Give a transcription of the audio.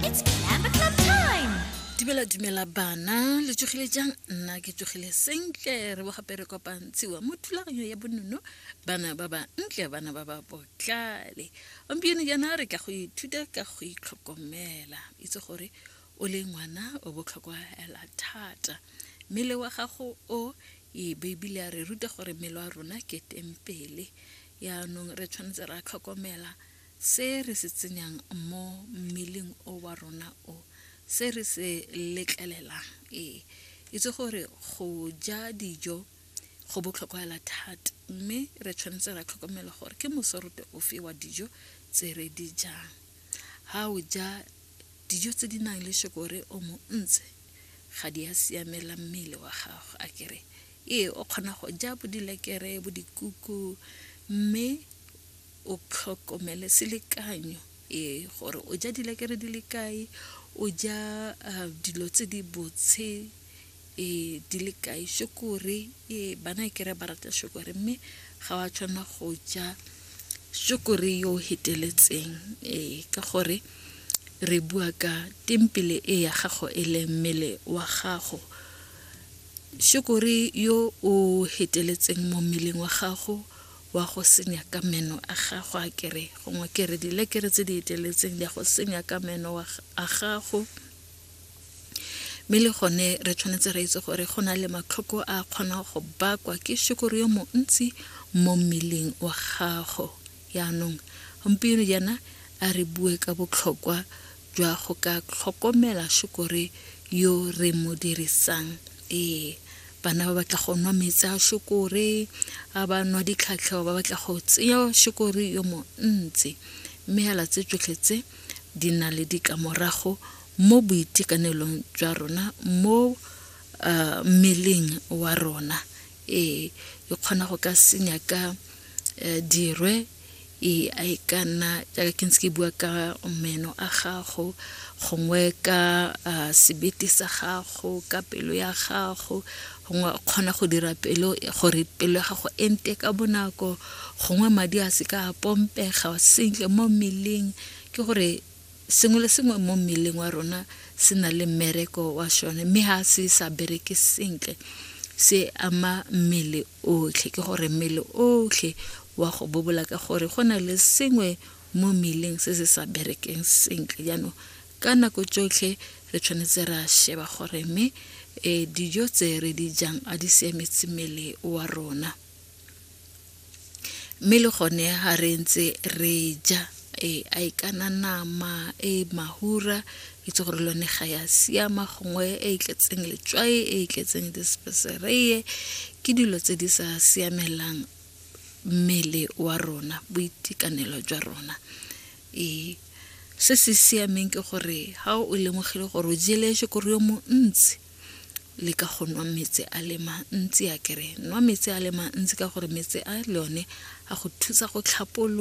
It's Clamp Club time! dumela dumela bana le tsogile jang nna ke tsogile sentle re bo gape re kopantshiwa mo thulaganyo ya bonono bana ba ba ntle bana ba ba botlale gompieno jaana re tla go ithuta ka go itlhokomela itse gore o le ngwana o botlhokwa hela thata mmele wa gago o e beibile a re ruta gore mmele wa rona ke tempele yaanong re tshwanetse ra tlhokomela Se re se tsenyang mo mmeleng o wa rona o, se re se letlelelang. Ee, itse gore go ja dijo go botlhokwa hela thata, mme re tshwanetse ra tlhokomela gore ke mosorote ofe wa dijo tse re di jang. Ha o ja dijo tse di nang le shokore o montsi ga di a siamela mmele wa gago a kere ee o kgona go ja bo dilekere bo dikuku mme o tlhokomele selekanyo ee gore o ja dilekere di le kae o ja ah, dilo tse di botshe e di le kae shokore e bana e kere ba rata shokore mme ga wa tshwanela go ja shokore yo o heteletseng ee ka gore re bua ka tempele e ya gago e leng mmele wa gago shokore yo o heteletseng mo mmeleng wa gago wa go senya ka meno a gago a kere gongwe kere dilekere tse di eteletseng di a go senya ka meno a gago mme le gone re tshwanetse re itse gore go na le matlhoko a kgonang go bakwa ke shekoro yo montsi mo mmeleng wa gago yaanong gompieno jaana a re bue ka botlhokwa jwa go ka tlhokomela šokore yo re mo dirisang ee bana ba batla go nwa metsi a šokore a ba nwa ditlhatlheo ba batla go tseya šokore yo montsi mme yala tse tsotlhe tse di na le dikamorago mo boitekanelong jwa rona mo uh, mmeleng wa rona ee e kgona go ka senya ka uh, dirwe e a e ka nna jaaka ke ntse ke bua ka meno a gago gongwe ka uh, sebete sa gago ka pelo ya gago gongwe o kgona go dira pelo gore pelo ya gago e nte ka bonako gongwe madi a se ka a pompega sentle mo mmeleng ke gore Sengwe le sengwe mo mmeleng wa rona se na le mmereko wa sone mme ga se sa bereke sentle se ama mmele otlhe ke gore mmele otlhe wa go bobola ka gore go na le sengwe mo mmeleng se se sa berekeng sentle jaanong ka nako tsotlhe re tshwanetse ra sheba gore mme um dijo tse re di jang a di siametse mmele wa rona mme le gone ga re ntse re ja e a e kana nama e mahura itse gore lone ga ya siama gongwe e e tletseng letswai e e tletseng dispesereye ke dilo tse di sa siamelang mmele wa rona boitekanelo jwa rona ee se se siameng ke gore ga o lemogile gore o jeleshe kore yo montsi le ka go nwa metsi a le mantsi a kere nwa metsi a le mantsi ka gore metsi a le one a go thusa go tlhapolola